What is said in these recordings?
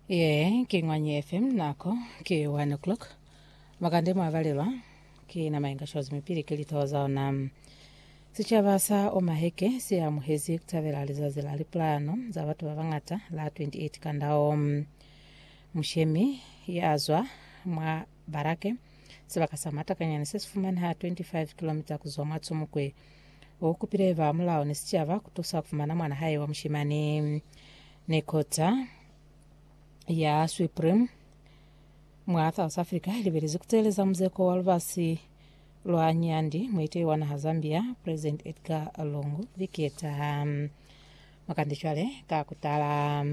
Ye ke Ngwanyi FM nako ke 1 o'clock. Makande mwa balelwa ke na mayenga shozi mipili ke lithoho za ona. Sicaba sa Omaheke se amuhezi ku tabela lizazi la lipulano za batu ba bangata la 28 kandao. Mushemi ya zwa mwa Barake, sibaka sa matakanyani se si fumaneha 25 kilomita ku zwa mwa Tsumukwe. U kupile ba mulao ni sicaba ku tusa ku fumana mwana hae wa mushimani. Ni kota ya Supreme mwa South Africa i libelezi ku teeleza muzeko wa lubasi lwa Nyandi muiteyi wa naha Zambia, President Edgar Lungu, viki ye taha. Makande cwale ka ku tala.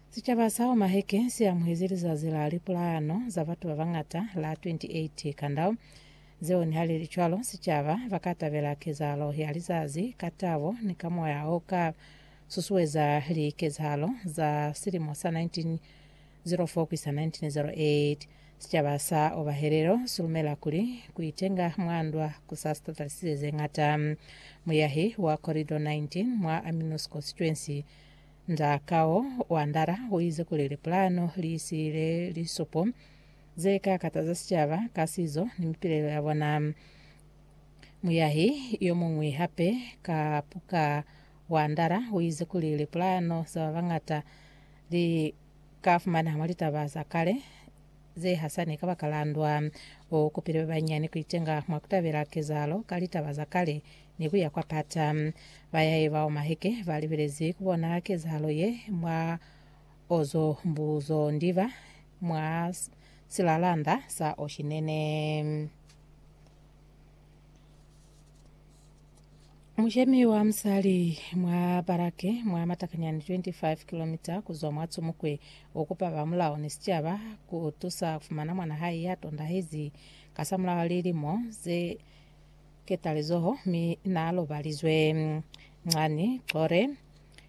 Sicaba sa Omaheke si amuhezi lizazi la lipulayano za batu ba bañata la 28 Kandau, zeo nihalicwalo sicaba baka tabela kezahalo ya lizazi ka tabo ni ka moya o ka susueza likezahalo za silimo sa 1904 ku isa 1908. Sicaba sa Obahelelo si lumela kuli ku itenga mwa ndwa ku sa sitatalisise ze ñata. Muyahi wa Corridor 19 mwa Amino Sconstituency, Nda Kao wa Ndala uize kuli lipulano liisiile lisupo zeka kataza sicaba ka sizo ni mipilelo yabona. Muyahi yomuñwi hape ka Puka wa Ndala uize kuli lipulano za babañata li ka fumana mwa litaba za kale ze hasani kabakala ndwa. U kupile ba banyinyani ku itenga mwa ku tabela kezahalo ka litaba za kale ni ku ya kwa pata. Bayahi bao maheke ba libelezi ku bona kezahalo ye mwa Ozo Mbuzo Ndiba mwa silalanda sa Oshinene. Mushemi wa musali mwa Barake mwa matakanyani 25 kilomita kuzwa mwa Tsumukwe ukupa ba mulao ni sicaba kutusa kufumana mwana hae ya tondahezi kasamulaho lilimo ze ketalizoho mi naalobalizwe. Ncani Chore,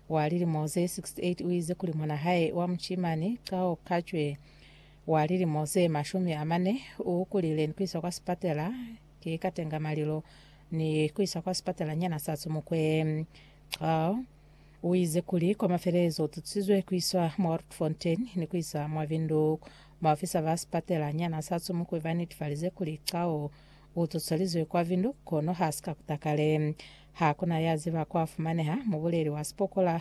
wa lilimo ze 68 uize kuli mwana hae wa mushimani Cao Kacwe, wa lilimo ze mashumi amane, uukulile ni kuiswa kwa sipatela Ki ka tenga malilo ni ku iswa kwa sipatala nyana sa Tsumukwe. Xaal u ize kuli kwa mafelelezo u tutisizwe ku iswa mwa Rietfontein ni ku iswa mwa Windhoek. Baofisa ba sipatala nyana sa Tsumukwe ba netifalize kuli Xaal u tutswelizwe kwa Windhoek kono ha si ka kuta kale. Ha ku na ya ziba kwa fumaneha mubuleli wa sipokola